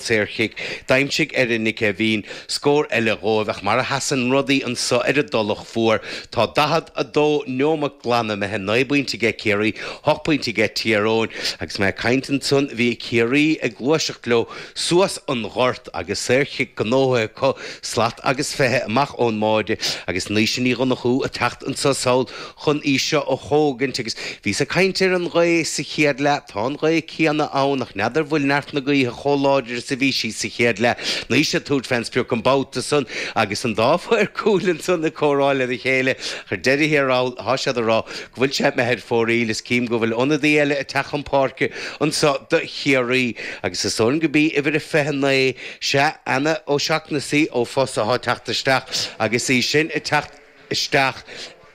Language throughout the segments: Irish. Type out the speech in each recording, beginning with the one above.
saorchic. D'aimsigh Erin Nic Eibhín scór eile dhóibh ach mar a sheasann rudaí annso ar an dTulach Mhór tá 42 neomat glan imithe, naoi bpointe aige Ciarraí, hocht pointe aige Tír Eoghain agus mé ag caint ansan bhí Ciarraí ag gluaiseacht leo suas an ghort agus saorchic gnóthaithe acu, slat agus fiche amach ón mbáide agus Naoise Ní Dhonnachú ag teacht annso sall chun í seo a thógaint agus bhíos ag caint ar an ghaoth sa chéad leath. Tá an ghaoth céanna ann ach n'fheadar bhfuil neart na gaoithe chomh láidir is a bhí sí sa chéad leath. Naoise ag tabhairt fé an sprioc an babhta san agus an dá mhaor cúil ansan ag comhrá lena chéile. Ach ar deireadh thiar thall tá siad ag rá go bhfuil sé imithe ar fóraoil. Is cím go bhfuil ionadaí eile ag teacht chun páirce anso do Chiarraí agus is oireann gurb í uimhir a 29, sea, Anna O'Shaughnessy ó Fossa atá ag teacht isteach agus í sin ag teacht. isteach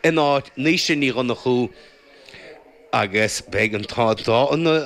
in áit Naoise Ní Dhonnchú agus beidh an dá,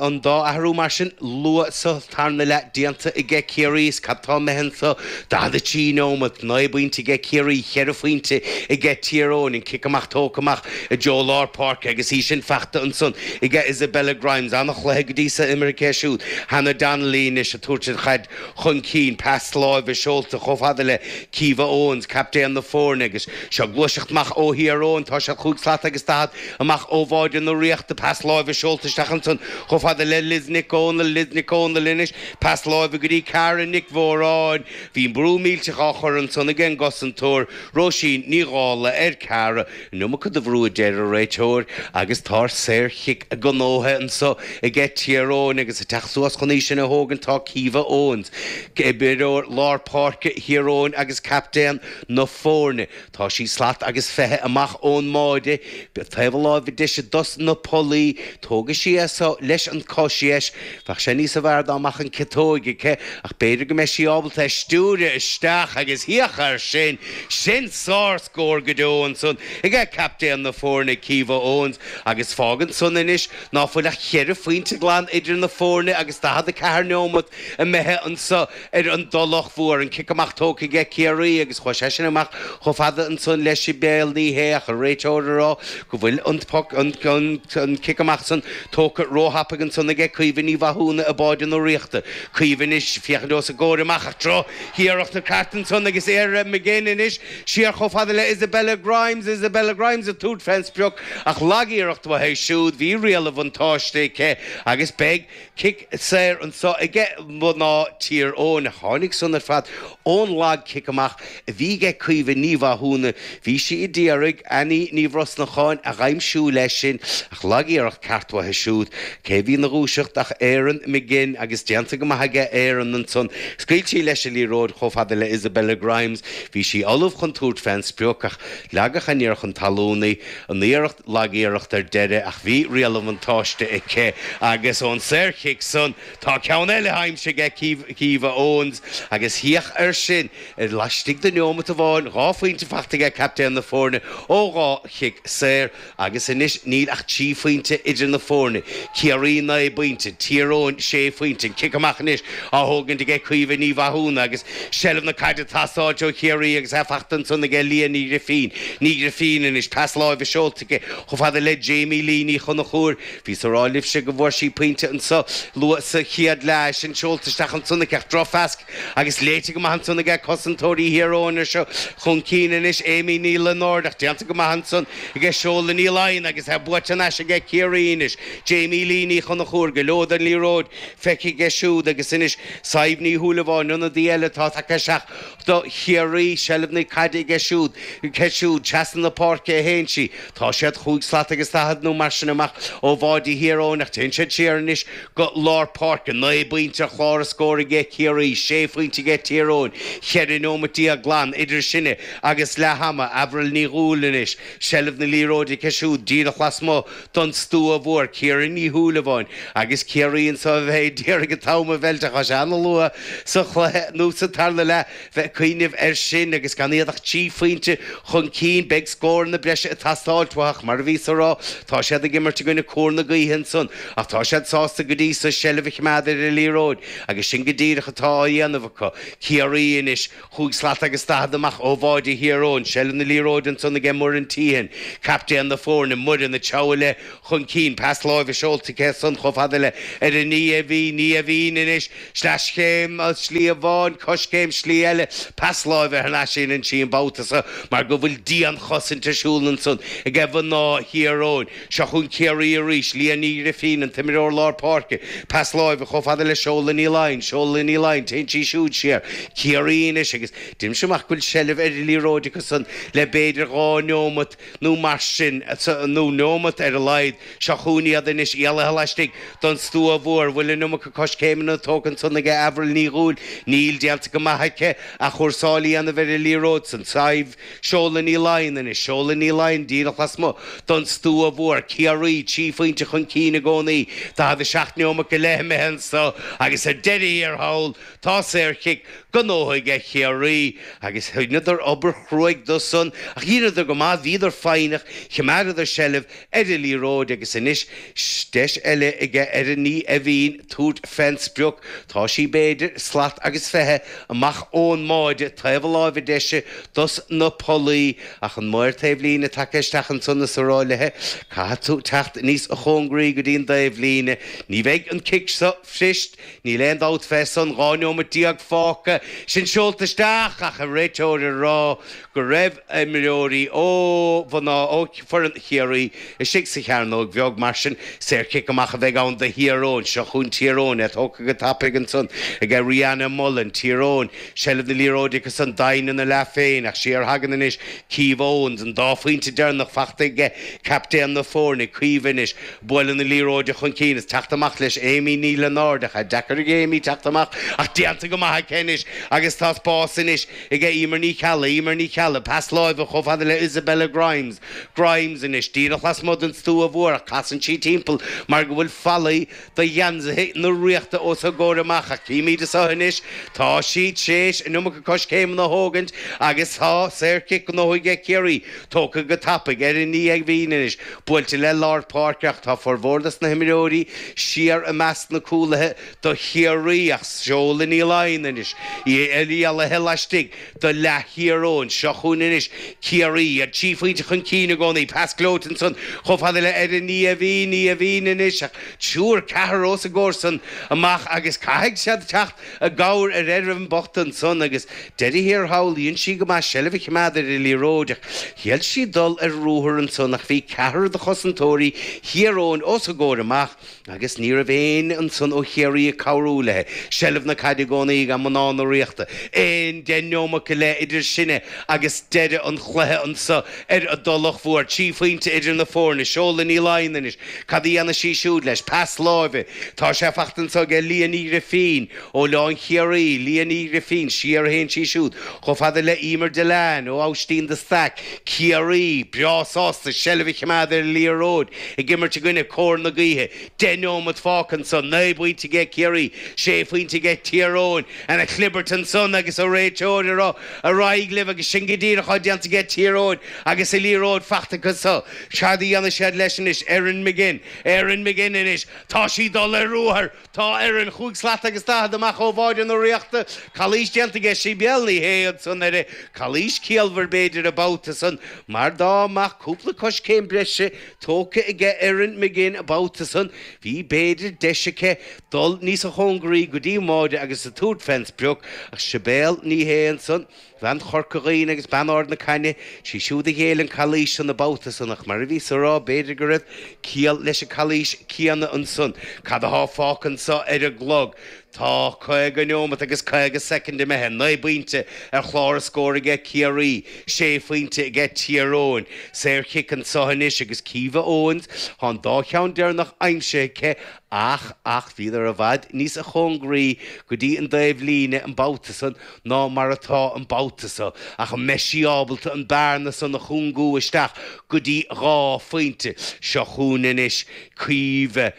an dá athrú mar sin luath sa tarna leath déanta aige Ciarraí is cad tá imithe annso 43 neomat, 9 bpointe aige Ciarraí, 4 phointe aige Tír Eoghain an cic amach tógtha amach i dtreo lár páirce agus í sin fachta ansan aige Isabella Grimes, an-chluiche go dtí so imeartha aici siúd Hannah Donnelly anois a tabhairt an chaid. chun cinn, pas láimhe seolta chomh fada le Caoimhe Owens, captaen na foirne, agus seo gluaiseacht amach ó Thír Eoghain, tá sé chúig slat agus daichead amach ó bháide na Ríochta, pas láimhe seolta isteach ansan chomh fada le Liz Nic Dhomhnaill, Liz Nic Dhomhnaill anois, pas láimhe go dtí Cara Nic Mhóráin, bhí brú millteach á chur ansan ag an gcosantóir, Róisín Ní Dhálaigh, ar Cara. Iomarca de bhrú a deir a réiteoir agus tá saor-chic gnóthaithe annso aige Tír Eoghain agus a teacht suas chun í sin a thógaint tá Caoimhe Owens, imreoir lár páirce Thír Eoghain agus captaen na fóirne. Tá sí slat agus fiche amach ó'n mbáide. Taobh na láimhe deise dos na pollaí. Tógfaidh sí é so leis an cois dheis. Bheadh sé níosa bhfearr dá mbeadh an ciotóg aici ach b'fhéidir go mbeidh sí ábalta é stiúireadh isteach agus féach air sin, sin sár! scór go deo ansan aige captaen na foirne Caoimhe Owens agus fágann san anois ná fuil ach cheithre phointe glan idir na foirne agus 44 neomat imithe anso ar an dTulach Mhór. An cic amach tógtha aige Ciarraí agus chuaigh sé sin amach chomh fada ansan le Sibéal Ní Shé ach an réiteoir a rá go bhfuil an poc, an cic amach san, tógtha ró-thapaidh ansan aige Caoimhe Ní Mhathúna i mbáide na Ríochta. Caoimhe anois ag féachaint os a gcomhair amach ach droch-iarracht i gceart ansan agus Erin McGinn anois Siar chomh fada le Isabella Grimes, Isabella Grimes a tabhairt fén sprioc ach lag-iarracht uaithi siúd, bhí riail an bhuntáiste aici agus beidh cic saor annso aige mná Tír Eoghain. Tháinig san ar fad ón lag cic amach a bhí aige Caoimhe Ní Mhathúna, bhí sí a d'iarraidh Annie Ní Bhrosnacháin a dh'aimsiú leis sin. Ach lagiarracht cheart uaithi siúd, cé bhí 'na dhúiseacht ach Erin McGinn agus déanta go maith aige Erin ansan. Scaoil sí leis a liathróid chomh fada le Isabella Grimes. Bhí sí ullamh chun tabhairt fén sprioc ach leagadh aniar chun talún í. An iarracht lagiarracht ar deireadh ach bhí riail bhuntáiste aici agus ón saorchic san tá ceann eile aimsithe age Caoimhe Owens agus féach air sin laistigh de neomat amháin dhá phointe fachta aige captaen na foirne ó dhá chic saor. Agus anois níl ach trí phointe idir na foirne, Ciarraí naoi bpointe, Tír Eoghain sé phointe. An cic amach anois á thógaint aige Caoimhe Ní Mhathúna agus seilbh na caide ag teastáilt ó Chiarraí agus é fachta ansan aige Leah Ní Ghrifín. Ní Ghrifín anois, pas láimhe seolta aici chomh fada le Jamie Lee Ní Chonchúir. Bhíos a rá libhse go bhfuair sí pointe anso luath sa chéad leath. É sin seolta isteach ansan aici ach drochphas. Agus léite go maith ansan aige cosantóirí Thír Eoghain. Seo chun cinn anois, Amy Ní Lionáird, ach déanta go maith ansan aige Seoladh Ní Laighin agus é buaite thar n-ais aige Ciarraí anois, Jamie Lee Ní Chonchúir, go leor den liathróid feicthe aici siúd agus anois Sadhbh Ní Shúilleabháin, ionadaí eile atá tagtha isteach do Chiarraí, seilbh na caide aige siúd, aici siúd, trasna na páirce a théann sí. Tá siad chúig slat agus daichead nó mar sin amach ó bháide Thír Eoghain ach téann siad siar anois go lár páirce. Naoi bpointe ar chlár na scór aige Ciarraí, sé phointe aige Tír Eoghain, cheithre neomat déag glan idir sinne agus leath ama. Avril Ní Dhúill anois. Seilbh na liathróide aici siúd díreach lasmuigh don stua mhór. Ciara Ní Shúilleabháin agus Ciarraí anso a bheidh ag iarraidh an t-am a mheilt ach tá sé an-luath sa chluiche nó sa tarna leath. bheith ag cuimhneamh air sin agus gan iad ach trí phointe chun cinn, beidh scóranna breise ag teastáilt uathu ach mar a bhíos a rá, tá siad ag imirt i gcoinne cóir na gaoithe ansan ach tá siad sásta go dtí so seilbh a chimeád ar an liathróid agus sin go díreach atá á dhéanamh acu. Ciarraí anois, chúig slat agus daichead amach ó bháide Thír Eoghain, seilbh na liathróide ansan aige Muireann Teehan, captaen na foirne, Muireann ag treabhadh léi chun cinn, pas láimhe seolta aici ansan chomh fada le ar a Naoimhín, Naoimhín anois, Sleaschéim slí amháin, coiscéim slí eile, pas láimhe thar n-ais a théann sí an babhta-sa mar go bhfuil dian-chosaint ar siúl ansan aige mná Thír Eoghain. Seo chugainn Ciarraí arís, Leah Ní Ghrifín, an t-imireoir lár páirce, pas láimhe chomh fada le Seoladh Ní Laighin, Seoladh Ní Laighin, téann sí siúd siar. Ciarraí anois agus deinimse amach go bhfuil seilbh ar an liathróid acu-san le b'fhéidir dhá neomat, nó mar sin, nó neomat ar a laghad. Seo chugainn iad anois, éalaithe laistigh den stua mhór. Bhfuil an iomarca coiscéimeanna tógtha ansan aige Avril Ní Dhúill? Níl, déanta go maith aici athchúrsáil a dhéanamh ar an liathróid san. Sadhbh. Seoladh Ní Laighin anois. Seoladh Ní Laighin díreach lasmuigh den stua mhór. Ciarraí trí phointe chun cinn i gcónaí. 47 neomat go leith imithe anso agus ar deireadh thiar thall, Tá saorchic gnóthaithe aige Ciarraí agus dheineadar obair chruaidh dó san ach dheineadar go maith, bhíodar foighneach, chimeádadar seilbh ar an liathróid agus anois deis eile aige Erin Ní Eimhín tabhairt fén sprioc. Tá sí b'fhéidir slat agus fiche amach ón mbáide taobh na láimhe deise dos na pollaí ach an maor taobhlíne tagtha isteach ansan is a rá léithe caithfidh tú teacht níos chóngaraí go dtí an dtaobhlíne, ní bheidh an cic seo fuirist. Níl aon dabht fé san dhá neomat déag fágtha sin seolta isteach ach an réiteoir a rá go raibh imreoirí ó mhná ó foireann Chiarraí istigh sa chearnóg bheag mar sin saorchic amach a bheidh ann do Thír Eoghain. Seo chugainn Tír Eoghain é tógtha go tapaidh ansan ag Ariana Mullen. Tír Eoghain, seilbh na liathróide agus an-doimhin ina leath féin ach siar a thagann anois Keeva Owens, an dá phointe deireanach fachta aige, captaen na foirne. Keeva anois. Bualadh na liathróide chun cinn is teacht amach leis Amy Ní Lionáird ach tá deacair ag Amy teacht amach ach déanta go maith aici anois agus tá spás anois ag Eimear Ní Cheallaigh, Eimear Ní Cheallaigh, pas láimhe chomh fada le Isabella Grimes, Grimes anois díreach lasmuigh den stua mhór ach casann sí timpeall mar go bhfuil fallaí do gheansaithe na Ríochta os a gcomhair amach ach címíd siúd anois tá siad tréis an iomarca coiscéimeanna a thógaint agus tá saorchic gnóthaithe aige Ciarraí. Tógtha go tapaidh Erin Ní Eimhín anois. Buailte le lár páirce ach tá formhór dos na himreoirí siar i measc na cúlaithe do Chiarraí ach Seodhla Ní Laighin anois í lonnaithe laistigh do leath Thír Eoghain. Seo chugainn anois Ciarraí, iad trí phointe chun cinn i gcónaí. Pas gleoite ansan chomh fada le Erin Ní Eimhín, Ní Eimhín anois ach triúr ceathrar os a gcomhair san amach agus caithfidh siad teacht i gcabhair ar Erin bhocht annsan agus deireadh thiar thall dhein sí go maith seilbh a chimeád ar an liathróid ach thriail sí dul ar ruathar annsan ach bhí ceathrar de chosantóirí Thír Eoghain os a gcomhair amach agus ní raibh éinne annsan ó Chiarraí ag cabhrú léithe seilbh na caide i gcónaí aige mná na Ríochta aon deich neomat go leith idir sinne agus deireadh an chluiche annso ar an dTulach Mhór. Trí phoinnte idir na fóirne. Seodhla Ní Laighin anois. Cad a dhéanfaidh sí siúd leis? Pas láimhe. Tá sé fachta annso aige Liadh Ní Ghrifín, ó Oileán Chiarraí, Liadh Ní Ghrifín, siar a théann sí siúd chomh fada le Emer Dillane, ó Aibhistín de Staic, Ciarraí, breá sásta seilbh a chimeád ar an liathróid, ag imirt i gcoinne cóir na gaoithe. Deich neomat fágtha annso, naoi bpoinnte aige Ciarraí, sé phoinnte aige Tír Eoghain. Ana-chlibirt annsan agus an réiteoir a rá Ar aghaidh libh agus sin go díreach atá déanta aige Tír Eoghain agus an liathróid fachta acu so. Cad a dhéanfaidh siad leis anois? Erin McGinn. Erin McGinn anois. Tá sí dul ar ruathar. Tá Erin chúig slat agus daichead amach ó bháide na Ríochta. Calaois déanta aige Sibéal Ní Shé ansan uirthi. Calaois ciallmhar b'fhéidir an babhta san mar dá mbeadh cúpla coiscéim breise tógtha aige Erin McGinn an babhta san bhí b'fhéidir deis aici dul níosa chóngaraí go dtí an bháide agus tabhairt fén sprioc ach Sibéal Ní Shé ansan Bean Chorca Dhuibhne agus bean Ard na Caithne, sí siúd a ghéill an calaois san an babhta san, ach mar a bhíos a rá, b'fhéidir go raibh ciall leis an calaois céanna ansan. Cad a thá fágtha anso ar an gclog? Tá caoga neomat agus caoga soicind imithe, naoi bpointe ar chlár na scór aige Ciarraí, sé phointe aige Tír Eoghain. Saorchic anso anois aige Caoimhe Owens, thá an dá cheann deireannach aimsithe aici, Ach ach bhíodar i bhfad níosa chóngaraí go dtí an dtaobhlíne an babhta san ná mar atá an babhta so ach an mbeidh sí ábalta an bearna san a chúngú isteach go dtí dhá phointe? Seo chugainn anois Caoimhe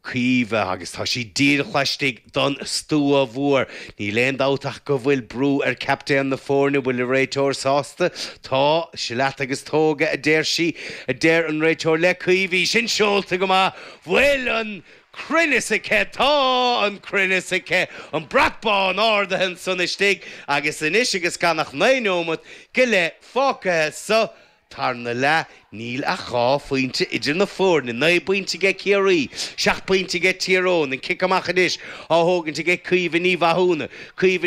Caoimhe agus tá sí díreach laistigh don stua mhór. Níl aon dabht ach go bhfuil brú ar chaptaen na foirne bhfuil an réiteoir sásta? Tá. Seo leat agus tóg é a deir sí. a deir an réiteoir le Caoimhe. Sin seolta go maith! Bhfuil an cruinneas aici, tá an cruinneas aici, an brat bán ardaithe ansan istigh, agus anois agus gan ach naoi neomat go leith fágtha sa tarna leath, níl ach dhá phointe idir na foirne, naoi bpointe aige Ciarraí, seacht bpointe aige Tír Eoghain, an cic amach anois á thógaint aige Caoimhe Ní Mhathúna, Caoimhe.